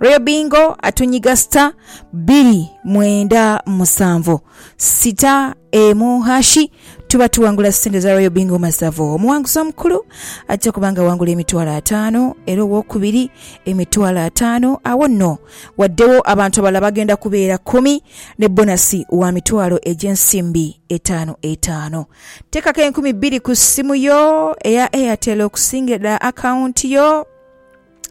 Royal Bingo atunyiga star biri mwenda musanvu sita emu hashi tuba tuwangula sente za Royal Bingo masavu. Omuwanguzi omukulu ajja kuba nga awangula emitwalo ataano era owokubiri emitwalo ataano awo nno waddewo abantu abalala bagenda kubeera kumi ne bonasi wa mitwalo egy'ensimbi etaano etaano. Teekako enkumi bbiri ku ssimu yo eya Airtel okusingira ddala akawunti yo.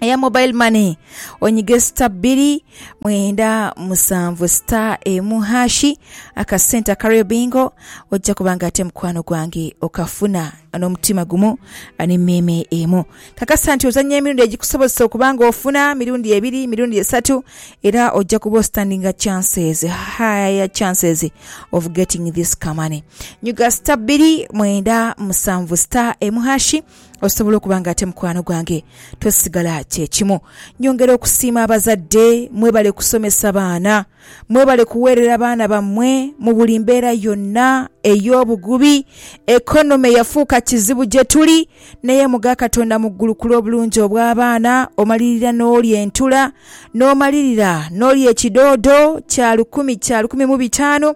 eya mobile money onyige sita bbiri mwenda musanvu sita emu hashi akasente akario bingo ojja kuba nga ate mukwano gwange okafuna n'omutima gumu n'emmeeme emu kakasa nti ozannya emirundi egikusobozesa okuba nga ofuna mirundi ebiri mirundi esatu era ojja kuba ostandinga chances higher chances of getting this kamane nyuga sita bbiri mwenda musanvu sita emu hashi Osobola okuba nga ate mukwano gwange tosigala kye kimu. Nyongera okusiima abazadde. Mwebale kusomesa baana. Mwebale kuweerera baana bammwe mu buli mbeera yonna ey'obugubi. Economy yafuuka kizibu gye tuli, naye mugha Katonda mu ggulu ku lw'obulungi obw'abaana, omalirira n'olya entula, n'omalirira n'olya ekidoodo kya lukumi kya lukumi mu bitaanu.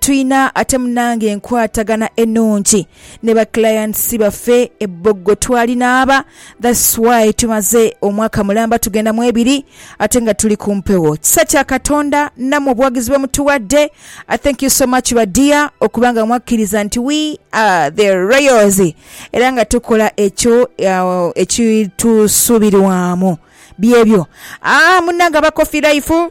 Twina ate munange enkwatagana enungi ne ba clients baffe e Boggo twali naaba that's why tumaze omwaka mulamba tugenda mu ebiri ate nga tuli ku mpewo kisa kya Katonda namwe obuwagizi bwe mutuwadde I thank you so much ba dear okuba nga mwakkiriza nti we are the royals era nga tukola ekyo uh, ekitusuubirwamu byebyo ah, munange aba Coffee Life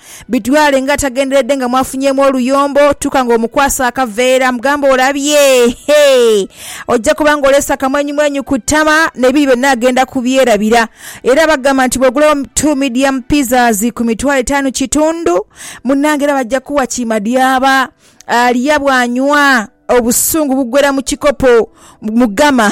Bitwale nga atagenderedde nga mwafunyeemu oluyombo, tuuka nga omukwasa akaveera, mugambe olabye, hee, ojja kuba nga oleese akamwenyumwenyu ku ttama n'ebiri byonna agenda kubyerabira. Era bagamba nti bw'ogulawo two medium pizzas ku mitwalo etaanu kitundu, munnange era bajja kuwa kiimadyaaba. Alya bw'anywa, obusungu buggwera mu kikopo, mu gama.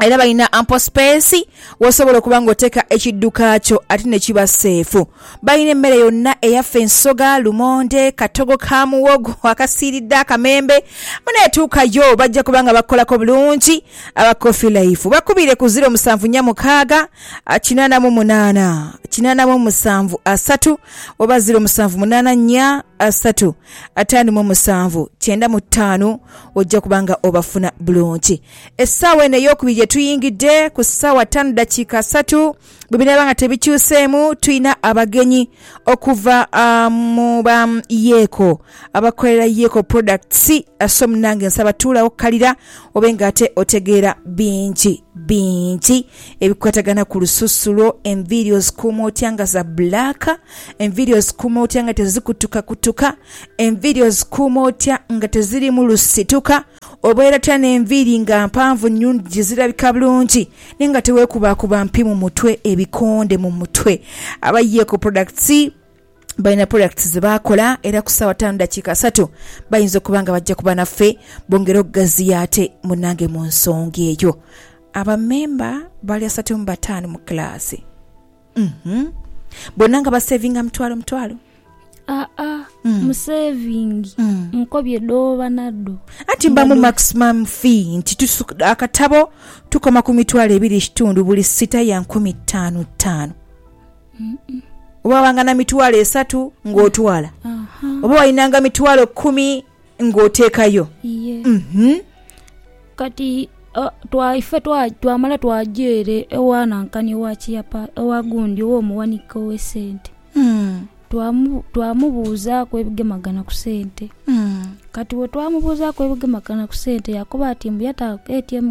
era balina ample space wosobola okuba nga oteka ekidduka kyo ate ne kiba seefu. Balina emmere yonna eyaffe ensoga, lumonde, katogo ka muwogo akasiiridde akamembe. Munaye tuukayo bajja kuba nga bakukolako bulungi. Aba Coffee Life bakubire ku ziro musanvu nnya mukaaga kinaana mu munaana kinaana mu musanvu asatu oba ziro musanvu munaana nnya asatu ataano mu musanvu kyenda mu ttaano ojja kuba nga obafuna bulungi. Essaawa eno ey'okubiri gye tuyingidde, ku ssaawa ttaanu dakiika asatu, bwe binaaba nga tebikyuseemu, tulina abagenyi okuva mu ba Yeeko abakolera Yeeko Products. So munnange nsaba tuulagho ku kalira obe ng'ate otegeera bingi bingi ebikwatagana ku lususu lwo, enviiri ozikuuma otya nga za bbulaaka, enviiri ozikuuma otya nga tezikutukakutuka, enviiri ozikuuma otya nga tezirimu lusituka. Obweratira n'enviiri nga mpanvu nnyo je zirabika bulungi naye nga teweekubaakuba mpi mu mutwe, ebikonde mu mutwe. Aba Yeko Products balina products ze bakola era ku ssaawa ttaanu ddakiika asatu bayinza okuba nga bajja kuba naffe bongere okugaziya ate munnange mu nsonga eyo. Abammemba bali asatu mu bataano mu kilaasi. Uhmm bona nga basevinga mutwalo mutwalo. Aa musevingi nkobye dhoba nadho. Anti mba mu maximum fee nti tusuka akatabo tukoma ku mitwalo ebiri ekitundu buli sita ya nkumi tanu tanu. Oba wabanga na mitwalo esatu nga otwala oba walinanga mitwalo kumi. Ng'oteekayo. Iye. Mhm. Kati, a, twa, ife twa, twamala twaja ere ewa nankani owa kiyapa, ewa gundi ow'omuwanika ow'esente. Mm. Twamu, twamubuuzaaku ebigemagana ku sente. Mm. Kati bwe twamubuuzaaku ebigemagana ku sente, yaakoba ati mbu yata ATM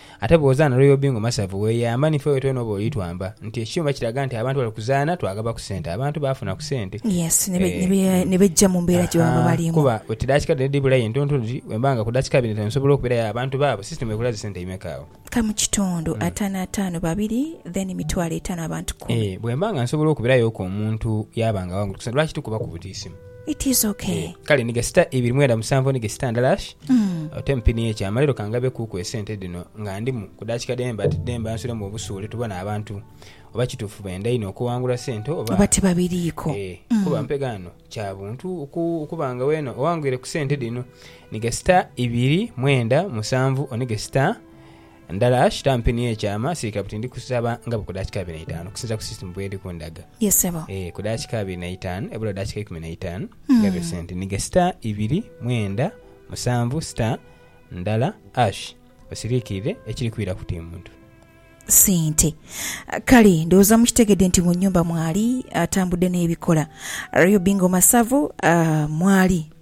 Ate bw'ozaana Royal Bingo Masavu weeyamba ni ffe wetwena oba oli twamba nti ekyuma kiraga nti abantu bali kuzaana twagaba ku sente abantu baafuna ku sente Yes, ne be- ne be- Eh, ne beggya mu mbeera gye baba Ahaa, balimu. kuba oti daakika dhino edhibula aye ntonto dhiri bwemba nga ku daakika bina tensobola okubeerayo awo abantu baabo system ekola zi sente imeka awo? Ka mu kitundu, ataano ataano babiri, then mitwalo etaano abantu kumi. Eh, bwemba nga nsobola okubirayo ku omuntu yaaba nga awangude kusente lwaki tukuba ku butiisimu? It is okay. Eh, kale ni gasita ibiri mwenda musanvu ni gesita ndalash mm. ote mpini ye kyama lero kangabe kuku esente dino nga ndimu kudakika demba demba nsule mu obusuule tubone abantu oba kitufu benda ino okuwangula sente oba oba tibabiriiko eh, mm. kuba mpega ano kya buntu oku, okubanga wena owangwire ku sente dino ni gesita ibiri mwenda musanvu oni gesita Ndala ashita ampe ni ekyama sirika buti ndi kusaba nga buku dakika abiri na itanu okusinzira ku system bweri kundaga. Ye sebo. Eeh ku dakika abiri na itanu ebula dakika ikumi na itanu ngabe sente nige star ibiri mwenda musanvu star ndala ash osirikirire ekiri kwira kuti muntu. Sente. Kale ndowooza mukitegedde nti mu nyumba mwali atambudde nebikola. Real Bingo Masavu mwali.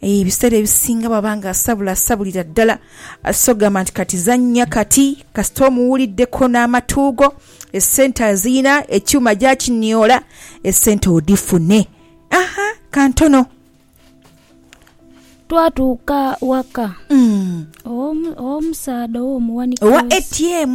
Ebiseera ebisinga bw'aba nga asabula asabulira ddala so kugamba nti kati zannya kati kasita omuwuliddeku n'amatu go, essente azirina, ekyuma gy'akinyoola, essente odhifune. Aha, ka ntono. Twatuuka waka ow'omusaadha ow'omuwanika w'ensi. Owa ATM.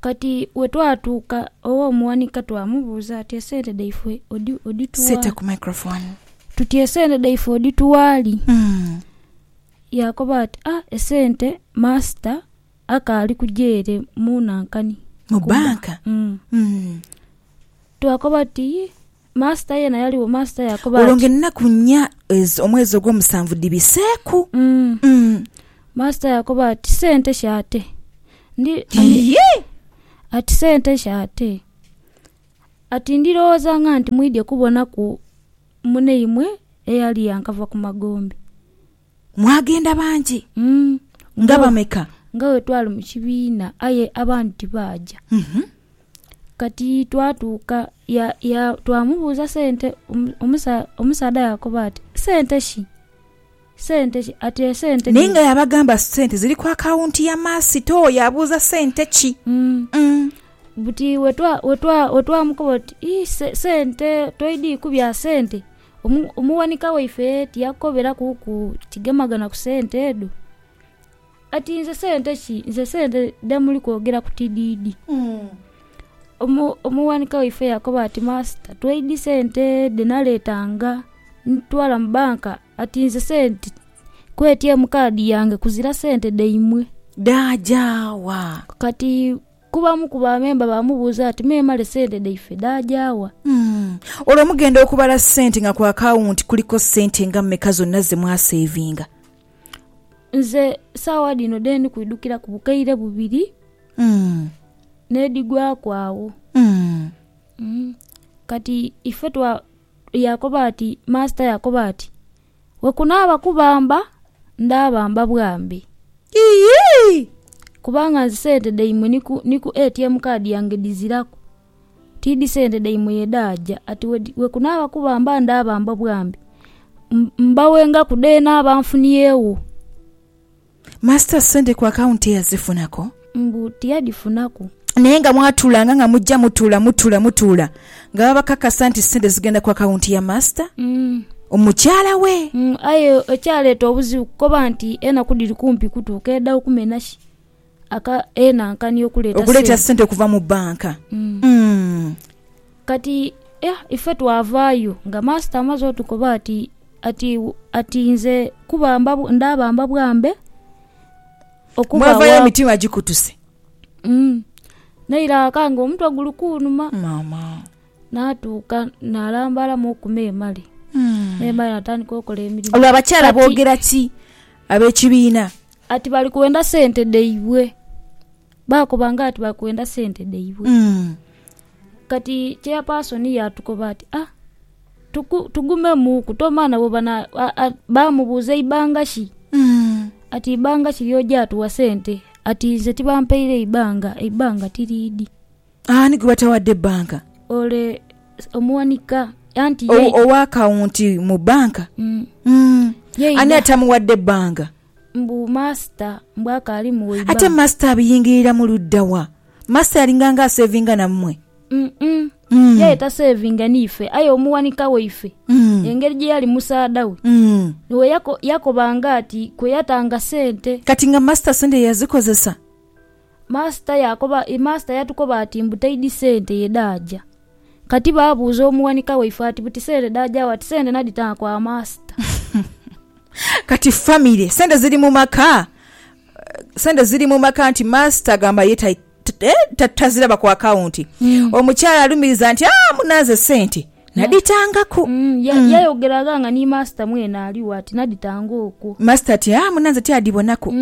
Kati bwe twatuuka ew'omuwanika twamubuuza ati, Esente dhaifwe odhitugha? Tuti, Esente dhaifwe odhitugha li? Yaakoba ati, Ah, esente maasita akaali kuja ere mu nankani. Mu bbanka? Twakoba tuti, Yii, Maasita yeena yaligho. Maasita yaakoba ati. Olwo ng'enaku nnya ezo omwezi ogw'omusanvu dhibiseeku. Mm. Maasita yaakoba ati, Sente ki ate? Ndi, andi- Iye! ati sente ki ate? Ati ndirowooza nga nti mwidhye kubonaku muneimwe eyali yankava ku magombe. Mwagenda bangi? Mm. Nga bameka? Nga bwe twali mu kibiina, aye abandi tibaaja. Mhm. Kati twatuuka, ya, ya, twamubuuza sente, omu- omusa- omusaadha yaakoba ati, Sente ki? Sente ki? Ati, Esente Naye nga yabagamba sente ziri ku akawunti ya maasita oyo abuuza sente ki? Mm. Mm. Buti wetwa- wetwa- wetwamukoba oti, "Ih, se- sente, toidhiku bya sente. Omuwanika waife tiyakukoberaku ku kigemagana ku sente edho? Ati nze sente ki nze sente dhemuli kwogera ku tidhidhi. Omu- Omuwanika waife yakoba ati masita tweidhi sente dhe naletanga ntwala mu banka ati nze sente ku ATM kaadi yange kuzira sente dhaimwe. Dhaaja wa? Kati Kuba omu ku bamemba baamubuuza ati, Memale sente dhaife dhaagya wa? Olwo mugenda okubala sente nga ku akawunti kuliko sente nga mmeka zonna ze mwaseevinga? Nze saagha dhino dhe ndi kwidhukiraku bukaire bubiri n'edhigwaku agho. Kati ife twa, yaakoba ati, Maasita yaakoba ati, Bwe kunaaba kubamba, ndaabamba bwambi. Iyii! Kubanga nze sente dhaimwe ni ku, ni ku ATM card yange dhiziraku. Tiidhi sente dhaimwe ye dhaaja. Ati bwe, bwe kunaaba kubamba, ndaabamba bwambi. M, mbawengaku dheene aba nfuniegho. Master sente ku account teyazifunaku. Mbu tiyadhifunaku. Naye nga mwatuulanga nga mujja mutuula mutuula mutuula nga babakakasa nti sente zigenda ku account ya master omukyala we. Aye ekyaleeta obuzibu kukoba nti enaku dhiri kumpi kutuuka edha okumena ki aka enankani okuleeta sente okuleeta sente okuva mu bank. Kati, ife twavaayo nga Maasita amaze otukoba ati, ati, ati, Nze kubamba, ndaabamba bwambe okuva wa. Mwavayo emitima gikutuse. Mm. N'eiraka nga omutwe guli kunuma. Mama. N'atuuka n'alambalamu okumeemale. Mm. Meemale n'atandika okola emirimu. Olwo abakyala boogera ki ab'ekibiina? Ati bali kwenda sente dhaibwe. Baakoba nga ati bali kwenda sente dhaibwe. Kati cheyapasoni yaatukoba ati, A, tuku, tugumemuuku, tomala nabo bana. a- a- Baamubuuza ibanga ki? Ati, Ibanga ki ly'oja atuwa sente? Ati, Nze tibampaire ibanga, eibanga tiriidhi. Ani gwe batawadde bbanka? Ole s- omuwanika, anti ye. Ow- Owa akawunti mu bbanka? Mm, Mm. ye Ani ina- atamuwadde banga? Mbu Masita mbu akaali mu waiba. Ate Masita abiyingiriramu ludda wa? Masita yalinganga aseevinga nammwe? Umm-umm. Yaye taseevinga n'ife, aye omuwanika waife, engeri gye yali musaadha we, niwe yakobanga ati kwe yatanga sente. Kati nga Masita sente yazikozesa? Master yakoba, Master yatukoba ati mbu taidi sente ye dhaaja. Kati baabuuza omuwanika waife ati buti sente dhaaja wa? Ati sente nadhitanga kwa Master. Kati famire, sente ziri mu maka, sente ziri mu maka nti Master agamba ye ta, ta, taziraba ku akawunti. Omukyala alumiriza nti, Aa, munanze sente nadhitangaku. Mm, yayogera gha nga ni Master mwene aligho ati nadhitanga okwo. Master ati, Aa, munanze ti adhibonaku.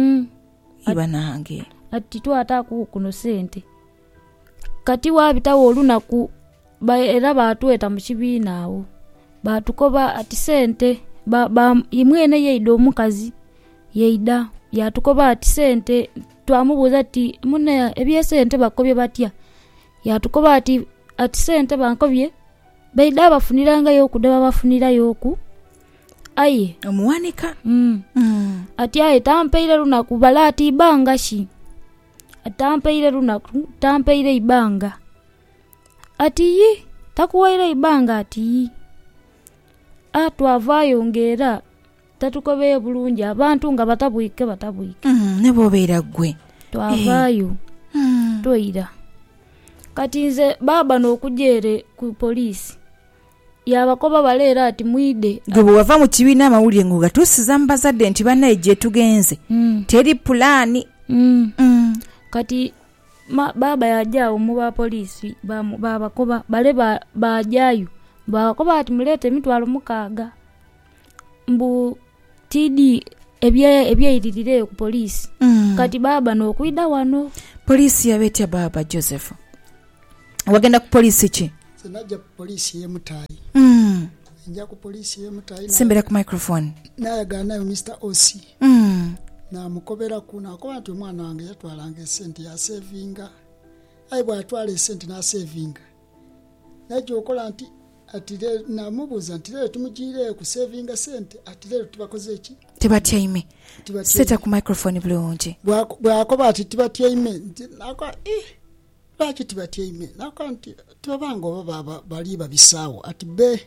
Ii banange. Ati titwataaku kuno sente. Kati waabitagho olunaku era baatweta mu kibiina agho baatukoba ati sente, ye mwene yaidha omukazi yaidha yaatukoba ati sente, twamubuuza tuti mune eby'esente bakukobye batya? Yaatukoba ati sente bankobye baidha babafunirayo ku dhe babafunirayoku. Aye omuwanika mm, mm. ati aye tampaire lunaku bale ati ibanga ki Ati tampaire lunaku tampaire ibanga ati yi takuwaire ibanga ati yi a twavayo nga era tatukobeye bulungi abantu nga batabwike batabwike Mm, ne bwobeera ggwe twavayo Mm. twaira kati nze baaba n'okuja ere ku poliisi Yaabakoba bale era ati, Mwidhe. Ggwe bwe wava mu kibiina amawulire ng'ogatuusiza mu bazadde nti banaye gyetugenze teri pulaani. Kati baaba yaaja agho mu ba poliisi baabakoba bale. Baajayo baabakoba bati, Muleete emitwalo mukaaga. mbu tiidi ebye ebyeiririra eyo ku police Mm. kati baaba nokwidha wano Poliisi yaba etya baaba Joseph? Wagenda ku poliisi ki? Nze najja ku poliisi y'e Mutayi. Mm. Nja ku poliisi y'e Mutayi na- Sembera ku microphone. nayagala nayo Mister OC Mm. namukoberaku nakoba nti omwana wange yatwalanga esente yasevinga aye bwatwala esente nasevinga Naija okola nti? Ati le, naamubuuza nti, Leero timujiire kuseevinga sente? Ati, Leero tibakoze ki? Tibatyaime. Seta ku microphone bulungi. Bw'akoba ati, Tibatyaime, nti, naakoba, Ih, lwaki tibatyaime? Naakoba nti, Tibabanga oba baaba bali babisaagho. Ati, Be,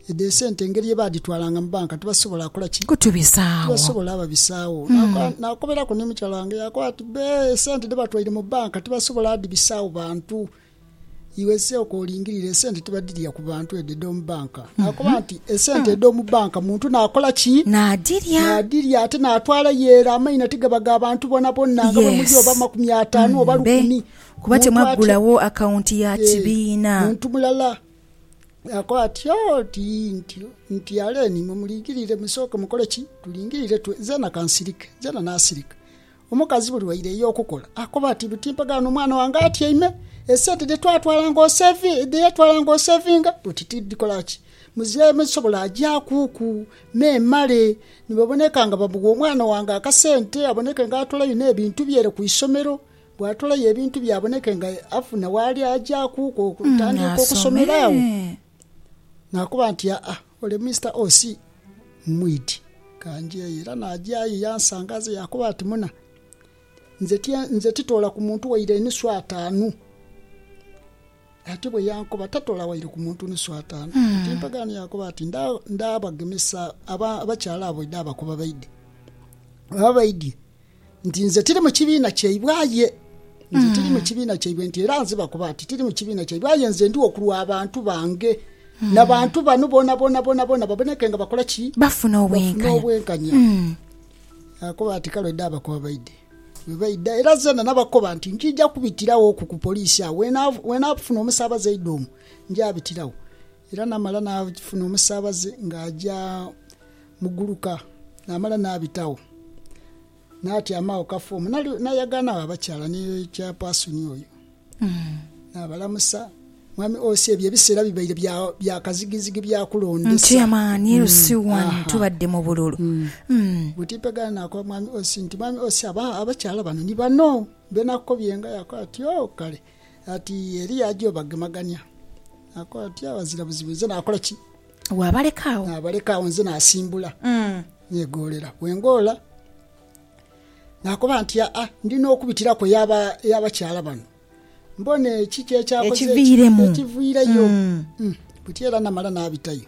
edho esente engeri ye baadhitwalanga mu banka tibasobola kola ki? Kutubisaagho. Tibasobola babisaagho. Naakoba, naakoberaku ni mukyala wange, yaakoba ati, Be, esente dhe batwaire mu banka tibasobola dhibisaagho bantu. Iwe Iseo k'olingirira esente tibadhirya ku bantu edho edh'omu banka? Naakoba nti, Esente edh'omu banka muntu naakola ki? Naadhirya. Naadhirya ate naatwala ye era. Amaina tigaba ga bantu bonabona, nga bwe muli oba makumi ataanu oba lukumi. Kuba temwaggulawo akawunti ya kibiina. Muntu mulala yaakoba ati, Oh, ti ntyo, nti Aleni, imwe mulingirire, musooke mukole ki? Tulingirire, zeena ka nsirike. Zeena naasirika. Omukazi buli waireyo okukola akoba ati, Timpagala n'omwana wange atyaime. Esente dhe twatwalanga osevi, dhe yatwalanga osevinga oti tidhikola ki? Muzira me zisobola agyakuku me male ni baboneka nga bamugha omwana wange akasente aboneke nga atolayo n'ebintu bye ere ku isomero. Bw'atolayo ebintu bye aboneke nga afuna waali agyakuku okutandika okusomera agho. Naakoba nti, Aa. Ole Mister OC mmwidhi. Kanjeeyo era najayo yansanga aze yakoba ati, Muna, nze tye nze titoola ku muntu waire enusu ataanu. Ati bwe yankoba, Tatoola waire ku muntu nusu ataanu. Ku timpagaane yakoba ati, Nda, ndaabagemesa aba, abakyala abo idho abakoba baidhe. Bwebaba baidhie. Nti nze tiri mu kibiina kyaibwe aye. Nze tiri mu kibiina kyaibwe nti era nziba kuba ati tiri mu kibiina kyaibwe aye nze ndigho ku lwa bantu bange. Na bantu bano bonabona bonabona baboneke nga bakola ki? Bafuna obwenkanya. Akuba ati kale oide abakoba baide. Bwe baida era zeena nabakoba nti nkiija kubitiragho ku ku poliisi agho. Wenafuna omusaabaze aidha omwo nja bitiragho. Era naamala naafuna omusaabaze ng'aja mu guluka, naamala naabitagho, naatyama agho kafa omwo. Naayagaana agho abakyala ni chairpersoni oyo, naabalamusa, Mwami Osi, ebyo ebiseera bibaire bya kazigizigi bya kulondesa. Chairman, LC one, tubadde mu bululu. Buti Mpegana naakoba Mwami Osi nti, Mwami Osi, abakyala bano ni bano be nakukobyenga? Yaakoba ati, Oh, kale. Ati Eliya aja obagemagania, naakoba ati, Abazira buzibu nze naakola ki? Waabaleka agho? Naabaleka agho nze naasimbula neegoolera. Bwe ngoola naakoba nti, Aa, ndi n'okubitiraku ey'abakyala bano mbone ki kyekyakoze ekiviireyo. Buti era namala naabitayo.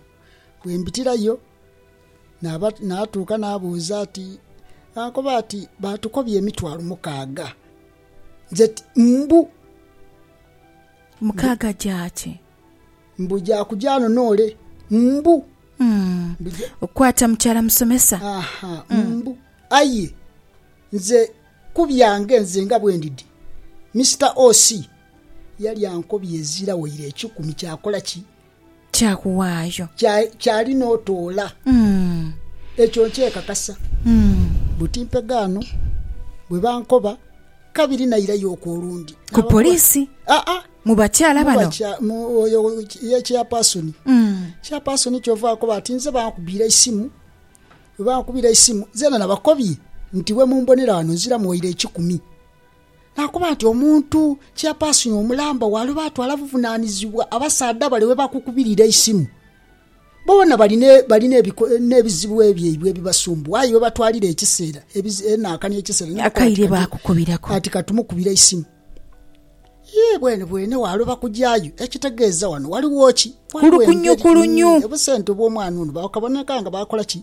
Bwe mbitirayo naatuuka naabuuza ati, Baakoba ati, Baatukobya emitwalo mukaaga. nze ti, mbu. Mukaaga gya ki? Mbu gya kuja ghano n'ole, mbu. Kwata mukyala musomesa. Aha, mbu. Aye nze ku byange nze nga bwendidi, Mister OC yali ankobye ezira waire ekikumi kyakola ki? Kya kuwaayo. Kya, kyali n'otoola. Ekyo nkyekakasa. Buti mpegaano, bwe bankoba kabiri nairayo okwo olundi. Ku poliisi? Aa. Mu bakyala bano? Mu bakya, mu oyo ye chairperson. Chairperson kyova akoba ati, Nze bankubiira eisimu, bwe bankubiira eisimu, nzena nabakobye nti bwe mumbonera ghano nziramu waire ekikumi. Naakoba nti, Omuntu cheyapaasini omulamba waaliba atwala buvunaanizibwa abasaadha bale bwe bakukubirira eisimu. Boona bali n'ebizibu ebyaibwe ebibasumbuwa, aye we batwalira ekiseera, enaaka n'ekiseera n'okukoba ati katumukubire eisimu. Yee, bwenebwene waaloba kujaayo. Ekitegeeza ghano ghaligho ki? Ghaligho engeri. Obusente obw'omwana ono bwakaboneka nga baakola ki?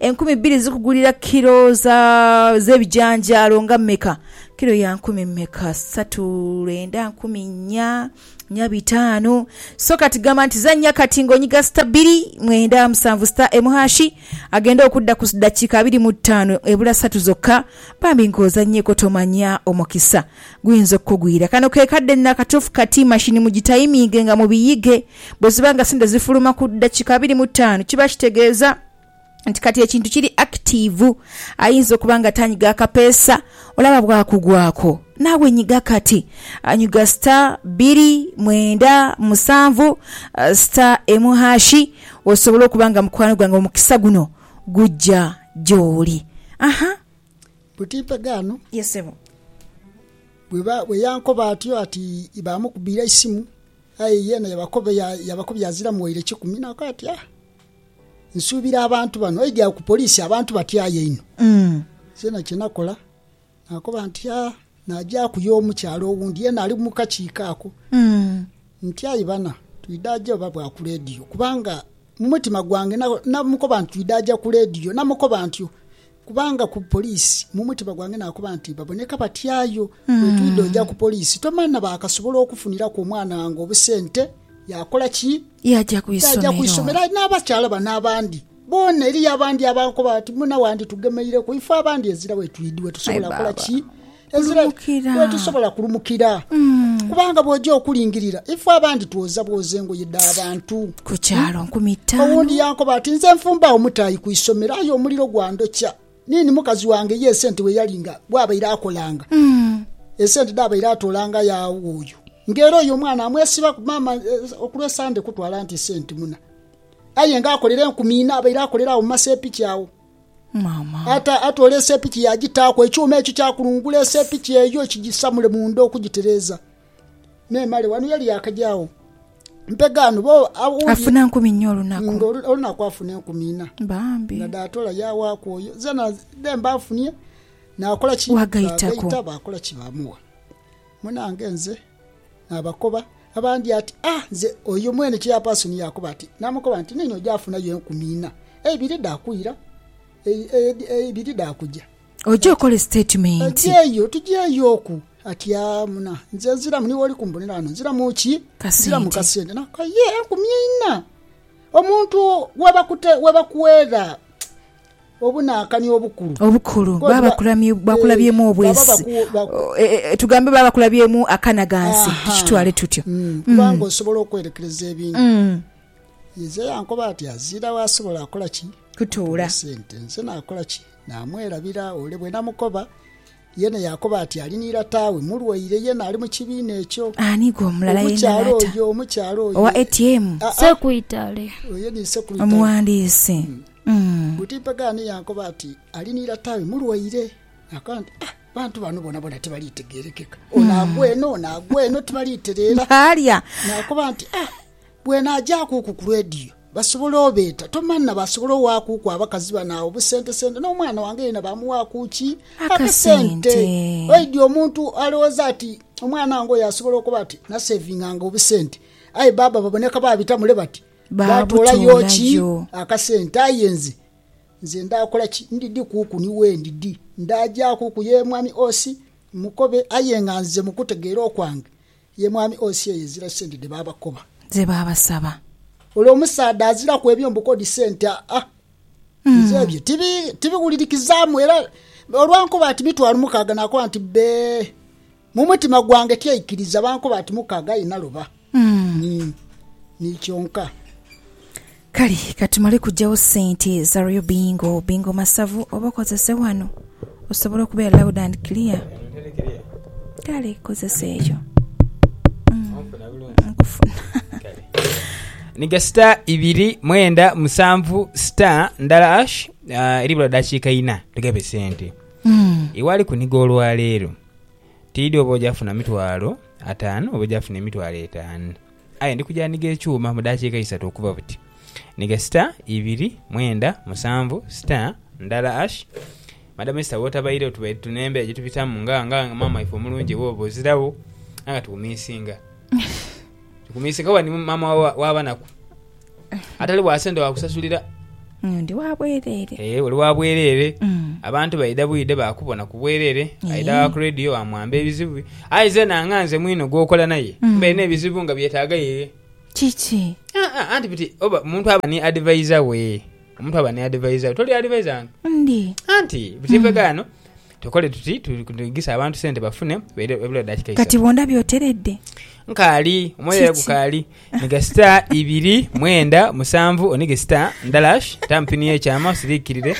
Enkumi bbiri zikugulira kilo za, z'ebijanjaalo nga mmeka? Kilo ya nkumi mmeka? Satu, lwenda, nkumi nnya, nnya bitaanu. So kati gamba nti zannya kati ng'onyiga sita bbiri, mwenda, musanvu, sita emu hashi. Agenda okudda ku ddakiika abiri mu ttaano ebula satu zokka. Bambi ng'ozannyeeko tomanya omukisa. Guyinza okukugwira. Kano ke kadde nno akatuufu kati mashini mugitayiminge nga mubiyige. Bwe ziba nga sente zifuluma ku ddakiika abiri mu ttaanu, kiba kitegeeza nti kati ekintu kiri akitiivu. Ayinza okuba nga tanyiga akapeesa, olaba bw'akugwako. Naawe nyiga kati. Nyiga star bbiri mwenda musanvu star emu haashi osobole okuba nga mukwano gwange omukisa guno gujja gy'oli. Aha! Buti mpegaano? Ye ssebo. Bwe yankoba atyo ati baamukubira eisimu, aye yeena yabakobya aziramu waire kikumi. Naakoba ati, Ah, nsuubira abantu bano. Aidha agho ku poliisi abantu batyayo inho. Nzeena kye nakola naakoba nti, Ah, naagyaku y'omukyala owundi yeena ali mu kakiiko ako nti, Aye bana, twidha aja oba bwa ku leediyo? Kubanga mu mutima gwange namukoba nti twidha aja ku leediyo. Namukoba ntyo. Kubanga ku poliisi mu mutima gwange naakoba nti, Baboneka batyayo. Bwe twidha oja ku poliisi, tomanha baakasobola okufuniraku omwana wange obusente. Yaakola ki? Yaaja ku isomero. Yaaja ku isomero. Aye n'abakyala bano abandi boona, eriyo abandi abankoba bati, Muna wanditugemeireku. Ife abandi ezira we twidhi, we tusobola kola ki? Kulumukira. Ezira wetusobola kulumukira kubanga bwoja okulingirira ife abandi twoza bwoza engoye dha bantu Ku kyalo nkumi ttaano. owundi yankoba ati nze nfumbagho mutaayi ku isomero aye omuliro gwandhokya nini mukazi wange ye esente weyali nga bwabaire akolanga esente dhabaire atoolanga yaagha oyo nga era oyo omwana amwesibaku maama eh, okulwa esande kutwala nti sente muna aye nga akolera enkumi ina abaire akolera agho mu masepiki agho Ate atoola esepiki yaagitaaku ekyuma ekyo kya kulungula esepiki eyo kigisamule munda okugitereeza. Memale wano yali yaakaja agho mpega ano bo awundi. Afuna nkumi inha olunaku. Nga olunaku afuna enkumi inha. Bambi. Nga dhaatoola yaawaaku oyo. Zeena dhemba nfunie naakola ki? Waagaitaku. Baagaita baakola ki? Baamuwa. Munange nze. Naabakoba abandi ati, A nze oyo mwene cheyapaasoni. Yaakoba ati, Naamukoba nti, Neeno oja funayo enkumi ina, eibiri dha kwira, eibiri dha kuja. Oje okole sitatimenti. Tujeeyo, tujeeyoku. Ati, A muna, nze nziramu, niiwe oli kumbonera ghano, nziramu ki? Nziramu kasente. Naakoba, Ye enkumi ina omuntu webakuweera? Obunankani obukulu. Obukulu. Baba bakulabyemu obwesi. Tugambe baba bakulabyemu akanaghansi, tukitwale tutyo. Kubanga osobola okwerekereza ebingi. Inze yankoba ati, Azira wo asobola akola ki? Kutuula. Sente. Nze nakola ki? Namwerabira. Ole bwenamukoba. Yena yaakoba ati ali ni lata we mulwaire, yena ali mu kibiina ekyo. Ani gwe omulala yena Omukyala lata oyo, omukyala oyo. owa ATM? Aa, Sekuitale. oyo ni Sekuitale. Omuwandiisi. Mm. Buti mpegho ani yankoba ati ali ni lata we mulwaire. Naakoba nti, Ah, abantu bano bonabona tibaliitegeerekeka. Ono agwa eno, ono agwa eno, tibaliitereera. Baalya. Naakoba nti, Ah, bw'enaagyaaku ku ku leediyo. Basobola obeeta. Tomanha baasobola owaakuuku abakazi bano agho busentesente. N'omwana wange yena baamuwaaku ki? Akasente. Oidhi omuntu alowooza ati omwana wange oyo asobola okoba ati naseevinganga obusente. Aye bbaabba baboneka baabita mule bati baatoolayo ki? Akasente. Aye nze, nze ndaakola ki? Ndidhikuuku ni wendidhi. Ndaagyakuku ye mwami Osi, mmukobe aye nga nze mu kutegeera okwange Ye mwami Osi eyo ezira sente dhe baabakoba. Ze baabasaba. Ole omusaadha aziraku ebyo mbu kodi sente aa. Nze ebyo tibiwulirikizaamu era olwankoba ati mitwalo mukaaga naakoba nti bbee. Mu mutima gwange tyaikiriza, bankoba ati mukaaga aye naloba ni kyonka. Kale ka tumale kujawo sente za Real Bingo, Bingo Masavu oba okozese wano osobole okubeera loud and clear. Kale kozesa eyo. Onfuna bulungi? Nkufuna. Niga star ibiri mwenda musanvu star ndala hash eribula dakiika ina tugabe sente. Iwe ali kuniga olwaleero, tiidhi oba oja funa mitwalo ataanu oba oja funa emitwalo etaanu. Aye ndi kuja nhiga ekyuma mu daakiika isatu okuva buti. Nhiga sita, ibiri, mwenda, musanvu, sita, ndala ash. Madam Esther wotabaire otubaire tuno embera gyetubitamu nga nga maama waife omulungi ewuwo bwozirawo aye nga tukumisinga. Tukumisinga kuba ndi maama wa banaku. Atali wa sente wa kusasulira. Mm, ndi wa bwerere. Ee, eh, oli wa bwerere. Mm. Abantu baidha bwidhe bakubona ku bwerere. Aidha wa ku radio wamwamba ebizibu. Aye zena nga nze mwino gwokola naye. Mm. Mbaire n'ebizibu nga byetaaga yeye. Kiki? Ah, ah, anti biti oba omuntu aba ni advisor we. Omuntu aba ni advisor we. Toli advisor wange? Ndi. Anti, bitivegano. Mm. Tukole tuti, tudiingise abantu sente bafune ebula daakika isatu. Kati bw'ondabye oteredde? Nkaali, omwoyo era gukaali. Nhiga sita ibiri mwenda musanvu onhige sita ndalash, taamu pini y'ekyama osiriikirire.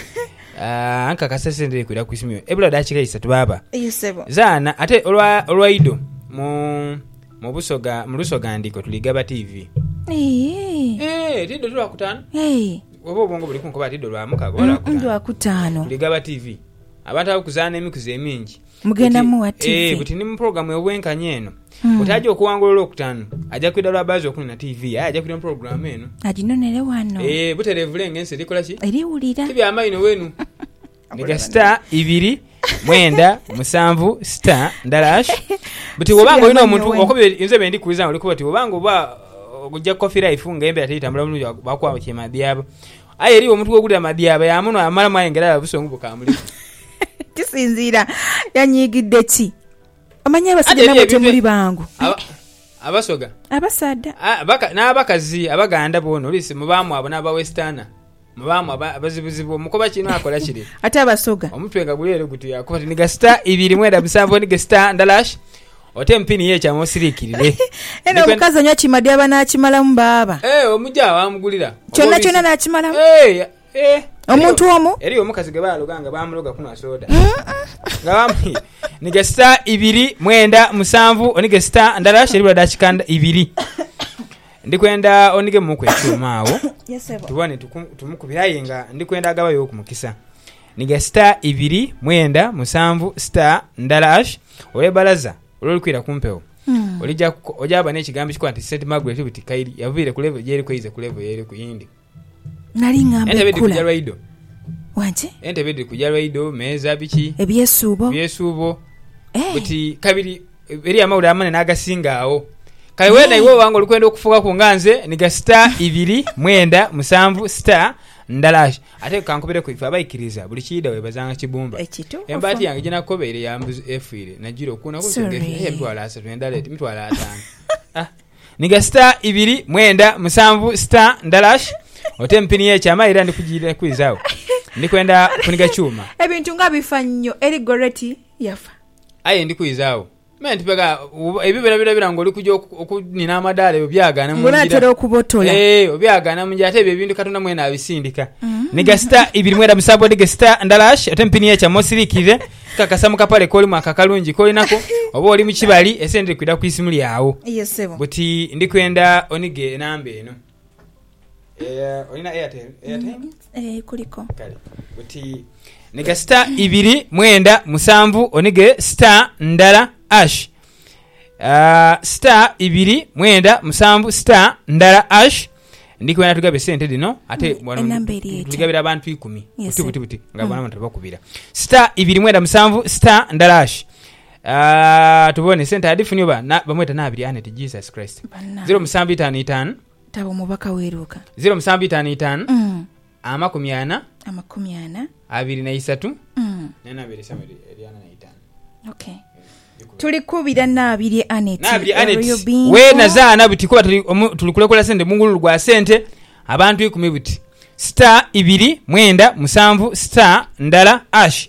Aah, nkakasa sente dhiri kwira ku isimu yo ebula daakika isatu baaba. Eyo sebo. Zaana, ate olwa, olwaido mu, mu Busoga, mu Lusoga ndiko tuli gaba tiivi. Eeee. Eeh, ti idho ti Lwakutaano? Eeh. Oba obwongo buli kunkoba ati idho Lwamukaga oba Mm, mm, Lwakutaano? Lwakutaano. Tuli gaba tiivi. Abatabwe kuzaana emikuzi emingi. Mugenda mugha tivi. Buti ni mu pulogulaamu ey'obwenkanya eno. Buti aja okuwangula Olwokutaanu, aja kwidha lwa baazi okunona tivi, aye aja kwidha mu pulogulaamu eno. Aginonere ghano. Ee, butereevu lengha ensi eri kola ki? Eri wulira. Ti bya maino wenu. Mega star ibiri mwenda musanvu star ndala ash buti bwoba nga olina omuntu inze byendi kubuuza nga oli kuba ti bwoba nga oba ogya coffee life nga embera teri tambula bulungi bakuwa kyema byabo Aye eriyo omuntu gwe kulira madyaaba, yaamunhwa yaamalamu aye nga era alaba busongo bukaamuliku. Kisinziira yanyiigidde ki. Omanyi abasajja namwe temuli bangu. Abasoga. Abasaadha. N'abakazi Abaganda boona oluusi mubaamu abo n'Abawesterner. Mubaamu abazibuzibu omukoba kino akola kire. Ate Abasoga. Omutwe nga guli ere guti akuba ti niga sita ibiri mwenda musanvu niga sita ndalash Oti emupini yekyama osirikirire. Eno omukazi anywa kima dyaba nakimalamu baaba. Eeh omuja wamugulira. Kyona kyona nakimalamu. Eeh eeh. Omuntu omu. Eriyo omukazi gwebaloga nga bamuloga kunwa soda. Nga bamu nige star ibiri mwenda musanvu onige star ndala sheri bula dakika ibiri. Ndikwenda onige muku ekyuma awo. Yes sebo. Tubone tumukubire aye nga ndikwenda agabayo ku mukisa. Nhiga sita ibiri, mwenda, musanvu, sita ndala ash olw'ebalaza olw'olukwira ku mpewo. Olija ku, oja kuba n'ekigambo ekikola nti St. Margaret buti kairi yaviire ku levo gy'eriku eize ku levo y'eriku eyindi. Nali ngamba Entebe dhiri kugya enkula. lwaido, Wangi? entebe dhiri kugya lwaido, meeza, biki, Ebyesuubo? ebyesuubo. Eh. Buti kabiri eriyo amawulire amanene agasinga agho. Kale weena Eh. iwe oba nga oli kwenda okufuukaku nga nze, nhiga sita ibiri, mwenda, musanvu, sita ndala ash. Ate kankubireku ife abaikiriza buli kiidha webazanga kibumba. Embaati yange gyenakobeire ya mbuzi efiire nagira okuuna kunsi nga efiire aye emitwalo asatu endala eti mitwalo ataanu ah. Nhiga star ibiri mwenda musanvu star ndalash oteme pini ye kyama era ndikujirira kwiza wo. Ndikwenda kuniga kyuma. Ebintu nga bifa nnyo eri Gorreti yafa. Aye ndikwiza wo. Me nti pega u, ebyo byonabyonabyona nga oli kuja okunina amadaala ebyo byagaana mu ngira, ee, obyagaana mu ngira, ate ebyo ebintu Katonda mwene abisindika. Ni gasita ibiri mwenda mu saabboodi, gesita ndalash ate mpini ye kyama osiriikirire, nkakasa mu kapale k'olimu ako akalungi k'olinaku, oba oli mu kibali, esente dhiri kwidha ku isimu lyagho. Buti ndi kwenda onighe enamba eno. Eh, olina airtel airtime Eh, kuliko. kale buti niga star ibiri mwenda musanvu onige star ndala ash Ah, star ibiri mwenda musanvu star ndala ash ndikwenda tugabe sente dhino ate Mm, wano enamba eri etya? tuligabira abantu ikumi Yes, buti sir. buti buti nga Mm. bona abantu tebakubira star ibiri mwenda musanvu star ndala ash tubone sente adifuni oba bamweta nabiri aneti Jesus Christ ziro musanvu itano itano taba omubaka weruka ziro musanvu itano itano mm. amakumi ana amakumi ana abiri na isatu mm. nenabiri esaba eryana na itano okay tuli kubira nabiri aneti nabiri aneti we nazaana buti kuba tuli tuli kulekola sente mungululu gwa sente abantu ikumi buti star ibiri mwenda musanvu star ndala ash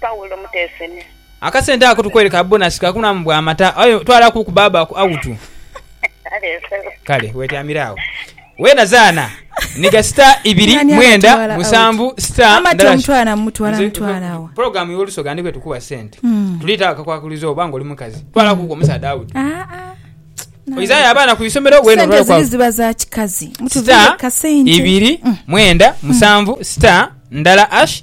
Paulo Muteesene. Akasente ako tukwereka bonasi ka kunamu bwa mata aye twala ku ku baaba ku awutu. Kale wetyamire agho weena zaana niga sita ibiri mwenda musanvu sita ndala program yo lusoga ndikwe tukuwa sente hmm. tulita akakwakulizo oba nga oli mukazi twala ku ku omusaadha awutu. Ah, ah. oizayo abaana ku isomero wenoziba za kikazi sita ibiri mm. mwenda musanvu sita ndala ash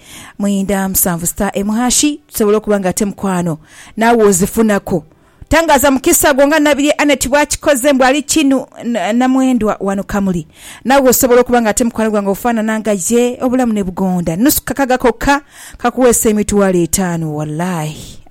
Mwenda musanvu star emu hashi tusobola okuba nga ate mukwano naawe ozifunaku. Tangaaza mukisa gwo nga Nabirye Annet bw'akikoze mbu ali kinu na mwendwa wano Kamuli. Naawe osobola okuba nga ate mukwano gwange ofaanana nga ye obulamu ne bugonda nnusu kakaga kokka kakuweesa emitwalo etaanu walayi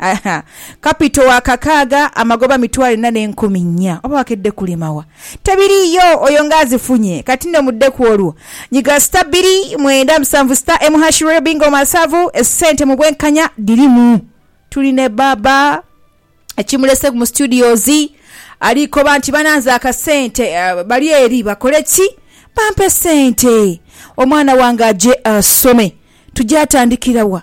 kapito wa kakaaga amagoba mitwalo ena n'enkumi nnya oba wakedde kulemawa. Tebiriiyo oyo nga azifunye. Kati nno mudde ku olwo. Nyiga sita bbiri mwenda musanvu sita emu hashi royal bingo masavu esente mu bwenkanya dhirimu. Tuli ne Bbaabba ekimulese mu studios ali koba nti bananze akasente bali eri bakole ki? Bampe sente omwana wange aje asome. Tugya tandikira wa?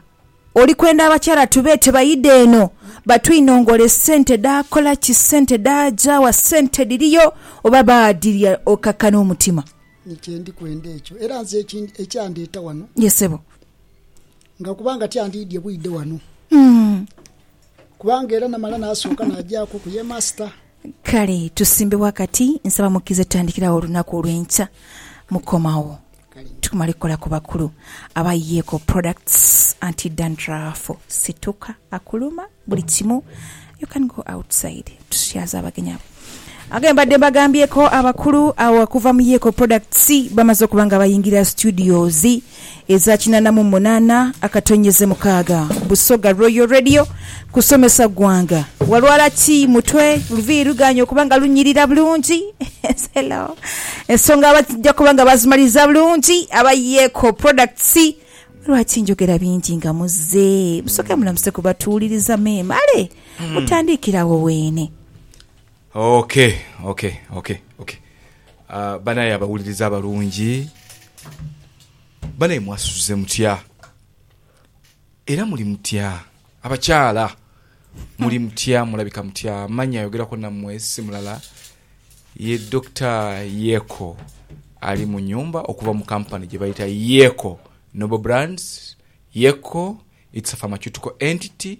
Oli kwenda abakyala tubeete baidhe eno batwinongole sente dhaakola ki, sente dhaaja wa, sente dhiriyo oba baadhirya okakane omutima? Ni kye ndi kwenda ekyo. Era nze ekindi ekyandeeta wano. Ye sebo. Nga kubanga tyandiidhye bwidhe wano. Kubanga era namala naasooka naagyaku ku ye Master. Kale tusimbe ghakati. Nsaba mukkirize tutandikire agho olunaku olw'enkya. Mukomawo. Tumale kola ku bakulu aba Yeco products anti dandruff situka akuluma buli kimu you can go outside tusyaza abagenyi abo age mbadde mbagambyeko abakulu abo okuva mu Yeco products bamaze okuba nga bayingira studios eza kinana mu munana akatonyeze mukaaga Busoga Royal Radio Kusomesa ggwanga walwala ki mutwe? Luviiri lugaanye okuba nga lunyirira bulungi? Selah. Ensonga bajja kuba nga baazimaliriza bulungi aba Yeko Products. Lwaki njogera bingi nga muzze? Musooke mulamuse ku batuwuliriza mwemale mutandiikire awo weene. Ok, ok, ok, ok. Banaye abawuliriza abalungi, banaye mwasuze mutya? Era muli mutya, abakyala? Muli mutya, mulabika mutya? Manya ayogeraku nammwe si mulala ye Dokita Yeko ali mu nnyumba okuva mu kampani gye bayita Yeko Noble Brands, Yeko, It's a pharmaceutical entity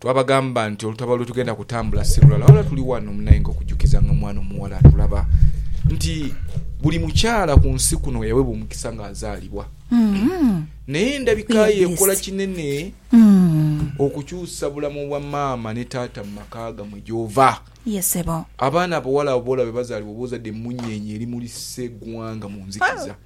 Twabagamba nti olutalo lwe tugenda kutambula si lulala wabula tuli wano munayenga okujukiza nga mwana omuwala atulaba nti buli mukyala ku nsi kuno weyawebwa omukisa nga azaalibwa naye endabika ye ekola kinene okukyusa bulamu bwa maama ne taata mu maka gamwe gyova. Abaana abawala abo boolaba bebazaalibwa oba ozadde emmunyeenye erimulisa eggwanga mu nzikiza.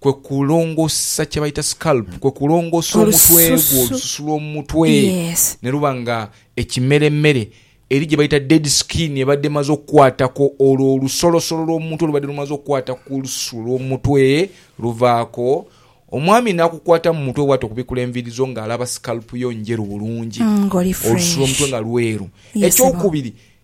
kwe kulongoosa kye baita scalp, kwe kulongoosa omutwe gwo, Olususu. olususu lw'omu mutwe, Yes. ne luba nga ekimeremere, eri gye baita dead skin ebadde emaze okukwatako, olwo olusolosolo lw'omu mutwe olubadde lumaze okukwata ku lususu lw'omu mutwe luvaako, omwami n'akukwata mu mutwe bw'ati okubikula enviiri zo ng'alaba scalp yo njeru bulungi, Mm, ng'oli olususu lw'omutwe fresh. nga lweru. Yes, Ekyokubiri,